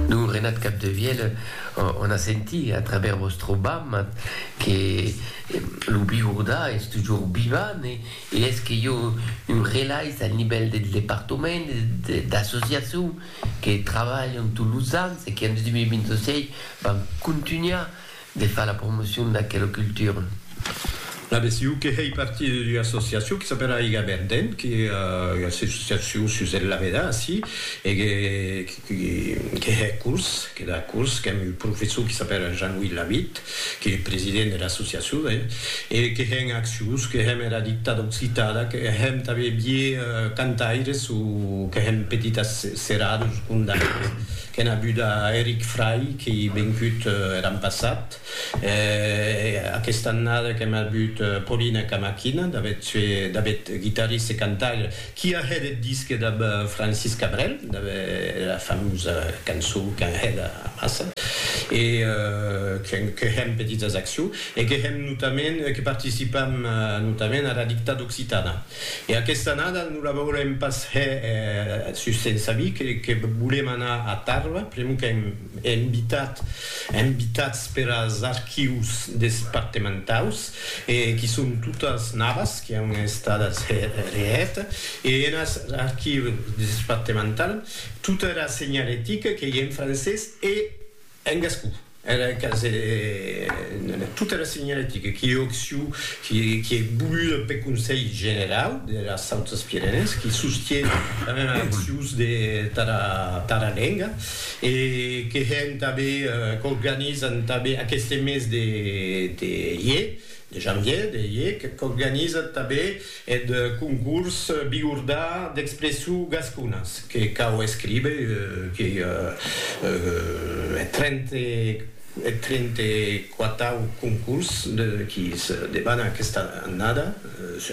Lo Renat Capdevielle en a sentit a travèrs vòstre bam que lo Biurdà es tujor vivant e es que jo un relais al nivèl del departament e d'associacion que trabalhan tots los ans e que en 2026 van contunhar De far la promocion d'aquela cultura. La BCU que hèi partir d'ua associacion que s'apèla Aiga Verden, que ua associacion sus eth Laveda ací, e que hè curs, que da curs, qu'èm un professor que s'apèla Jean-Louis Lavitte, qu'ei eth president dera associacion, e que hèn accions, que hèm era dictada occitada, que hèm tanben vier cantaires o que hèm petites seradas o condaires. Qu'en abuda Eric Fray qu'ei vencut er an passat, aquesta annada qu'em abut Paulina Camaquina, d'avet guitarrista e cantaire, qui a hèt eth disque dab Francis Cabrel, dab era famosa cançon qu'an hèt amassa, e que hèm petitas accions, e que hèm notament, que participam notament ara Dictada Occitana. E aquesta annada non la veurem pas hè sus sens avis que volem anar a Tarba, pr'amor qu'èm invitat, invitats per as archius despartementaus e qui son totas navas qui an estadas hè reèt e en as archius despartemental tota era senhalética qu'ei en francés e En gascon, era casa de tota era senhaletica qui ei occiu, qui ei voluda peth Conselh Generau dera Sautas Pirenèes, qui sostie tanben era accius tara lenga e que hèn tanben, qu'organizan tanben aqueste mes de ier, de janvier, de ier, qu'organizan tanben Eth concurs bigordà d'expression gasconas que cau escríber qu'ei eth trente quatau concurs qui se debana aquesta annada,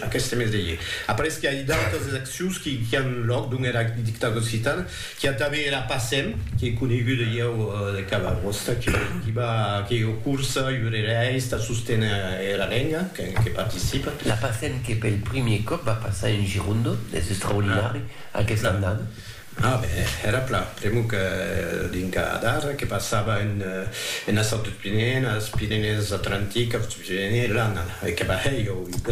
aqueste mes de ier. Après que ai d'autas accions qui an lòc dont era dictada occitana, Qu'i a tanben era Passem, qu'ei coneguda ieu de cada costat, qu'i va, que ei o curs iurerèis tà sosténer era lenga, que participa. La Passem que pel primier còp va passar en Girondo, es extraordinari, aquesta annada. A ben, era plan, pr'amor que dinca d'ara que passava enes autres Pirenèes, Pirenèes Atlantic, Autres Pirenèes, l'ana, e que va hèr ieu ua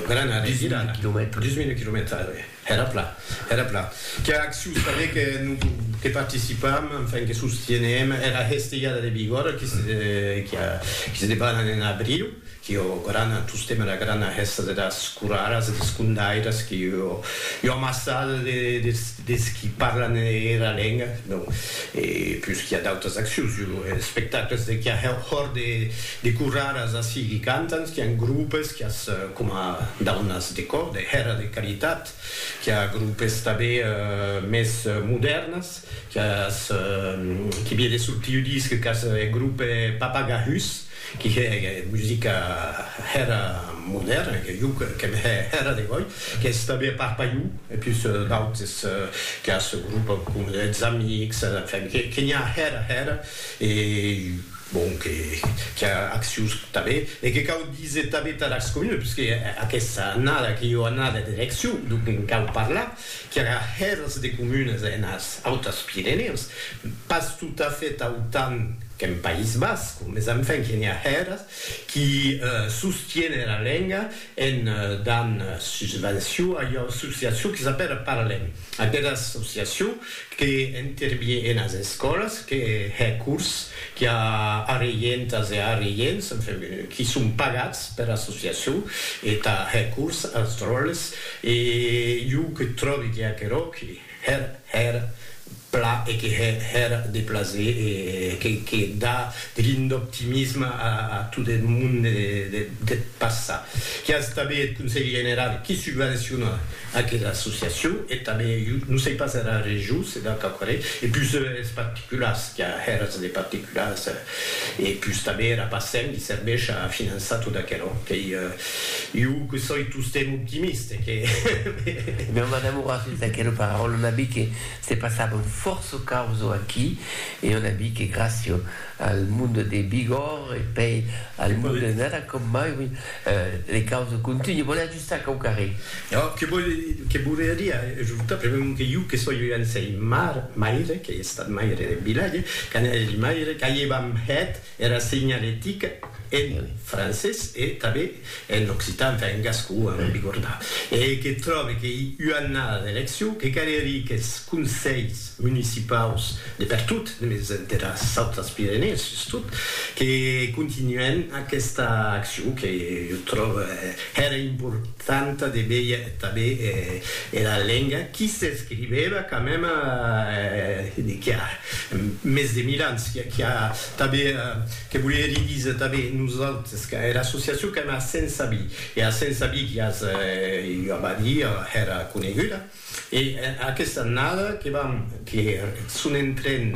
grana revirada, 10.000 quilomètres. Era plan, era plan. Qu'a acciu saber que non que participam, enfin que sostienem era hestejada de Bigòrra qui se qui a qui se debanan en abriu, qui o grana tostem era grana hèsta de das coraras e des condairas qui o ua amassada de des des qui parlan era lenga, non e pus qui a d'autas accius, jo espectacles de qui a hòr de De corraras ací qui cantan, qu'i a un groupes qui as coma daunas de còr, de hèra de caritat, qu'i a groupes tabé mès modèrnas, qu'i as qui vie de sortir ua disc qu'as eth groupe Papagahus, qui hè musica hèra modèrna, que jo qu'èm hè hèra de gòi, qu'i as tabé a Parpaiu, e pus d'autes, qu'i as groupes coma eths Amics, enfin, que n'i a hèra hèra, e. Bon, que qu'i a accions tanben e que cau díser tanben tà las comunes, puisque aquesta annada qu'ei ua annada d'eleccion, donc en cau parlar qu'i aurà hèrs de comunes enas Autas Pirenèus, pas totafèt autant qu'en País Basc, mes enfin qu'i a hèrs qui sostiene era lenga En dan susvencion a ua associacion que s'apèra Paralèm, aquera associacion que intervie enas escòlas, que hè cors, qui a arreientas e arreients, enfin, qui son pagats pera associacion e tà hè cors as dròlles e jo que tròbi que aquerò que hèr hèr pla e que hè hèr de plaser e que que da de l'indoptimisme a a tot eth mon de de deth passat. Qué as tanben eth Conselh General qui subvenciona aquera associacion e tanben jo non sei pas era region se da quauquarren e pus es particulars qu'a hèrs de particulars. E pus tanben era Pacem li serveish a finançar tot aquelo. Qu'ei iu que soi tostemp optimiste, que. Meu m'enamorassi d'aquelo paraulo, n'a bi que se passava un fòrço causo aquí, e on a bi que gracio al mundo de Bigòr e pei al mundo de Nada com mai, oui, le causo continue. Bon, Sac au carré. Ò, que vòle, que voleria ajortar, premèu que iu, que soi un sei mar, maire, qu'ei estat maire de vilatge, quand èri maire, qu'aievam hèt era segnaletica en francés e tanben en occitan, enfin en gascon, a non bigordar, e que tròbe qu'ei ua annada d'eleccion, que calerie qu'es conselhs municipaus de pertot, mes deras autras Pirenèes sustot, que continuèn aquesta accion que jo tròbe hèra importanta de veir tanben era lenga qui s'escrivèva quand même qui a mes de mil ans, qui a tanben, que volie li díser tanben nosautres, que era associacion qu'èm a Sensabí, e a Sensabí qui as ua badia hèra coneguda, E aquesta annada que vam que son en tren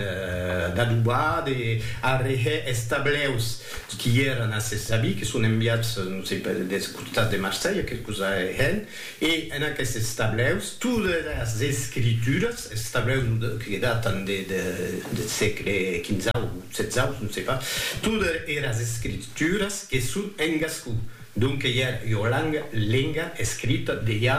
d'adobar, de arrehè es tableus qui èran a se sabi, que son enviats, non sei per, des costats de Marselha, que cosa hèn, e en aquestes tableus todas las escrituras, es tableus que datan de deth sègle quinzau, setzau, non sei pas, todas eras escrituras que son en gascon. Donque ja ua lang, lenga, escrita, dejà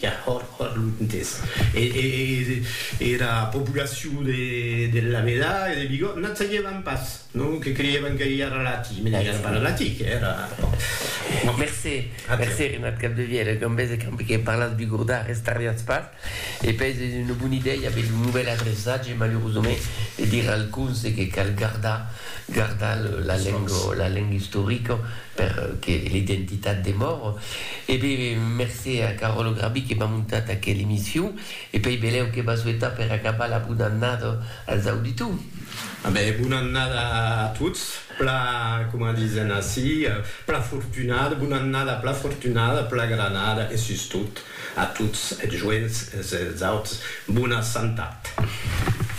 ja hòr, hòr lontes. E era populacion de Lameda e de Bigòt nat sagevan pas, non? Que creièvan que ja era latin, mès ja era pas latin, que era, bon. Mercé, mercé, Renat Capdevièlh, e Gambés e Camp, que parlatz bigordà, restariatz pas. E pes es una bona idèia aver lo novèl adreçatge, malurosament, e dire al conse que cal gardar, gardar la lenga, la lenga istorica per que l'identitat demore. E be, mercé a Caròlo Grabí que m'a montat aquela emission e pei belèu que m'a souetat per acabar la bona annada als auditors. A be, bona annada a tots, pla, coma disen ací, pla fortunada, bona annada pla fortunada, pla granada e sustot A tots es joents, es auts, bona santat.